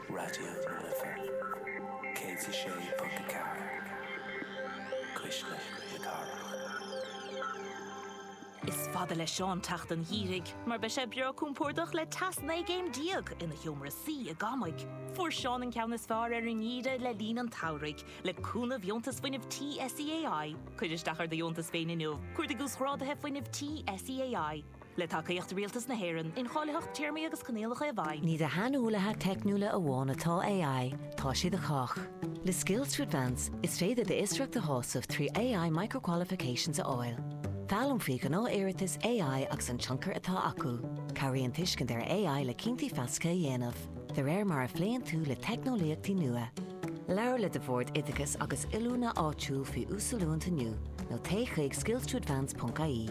Raidió na Life 106.4 Cuisle na Cathrach. Is fada le Seán teacht an gheimhridh mar beidh sé breá compordach le teas 19 gcéim ina sheomra suí i gCamaigh. Fuair Seán an ceann is fearr ar an ngeimhreadh le linn an tsamhraidh le cúnamh dheontas fuinnimh tí SEAI. Cuir isteach ar do dheontas féin inniu. Cuardaigh uasghráduithe fuinnimh tí SEAI. le tacaíocht Rialtas na hÉireann, incháilitheacht téarmaí agus coinníollacha i bhfeidhm. Ní do shaineolaithe teicniúla amháin atá AI, tá sé do chách. Le Skills to Advance, is féidir d'fhiosracht a shásamh trí AI Micro-Qualifications a fháil. Foghlaim faoi ghnáth-iarratais AI agus an tionchar atá acu. Cabhraíonn tuiscint ar AI le cinntí feasacha a dhéanamh, de réir mar a phléann tú le teicneolaíochtaí nua. Labhair le do Bhord Oideachais agus Oiliúna áitiúil faoi uasoiliúint inniu, nó téigh chuig skills-to-advance.ie.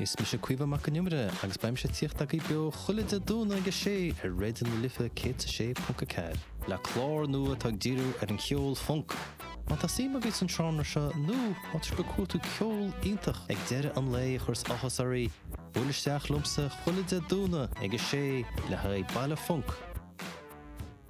Is mise Caomhán Mac Con Iomaire agus beidh mise ag tíocht agaibh beo chuile Dé Domhnaigh ag a sé ar Raidió na Life 106.4. Le clár nua atá ag díriú ar an cheol func. Má tá suim agaibh san seánra seo nó má tá sibh ag cuartú ceol iontach ag deireadh an lae a chuireas áthas oraibh, buail isteach liomsa chuile Dé Domhnaigh ag a sé le haghaidh baile func.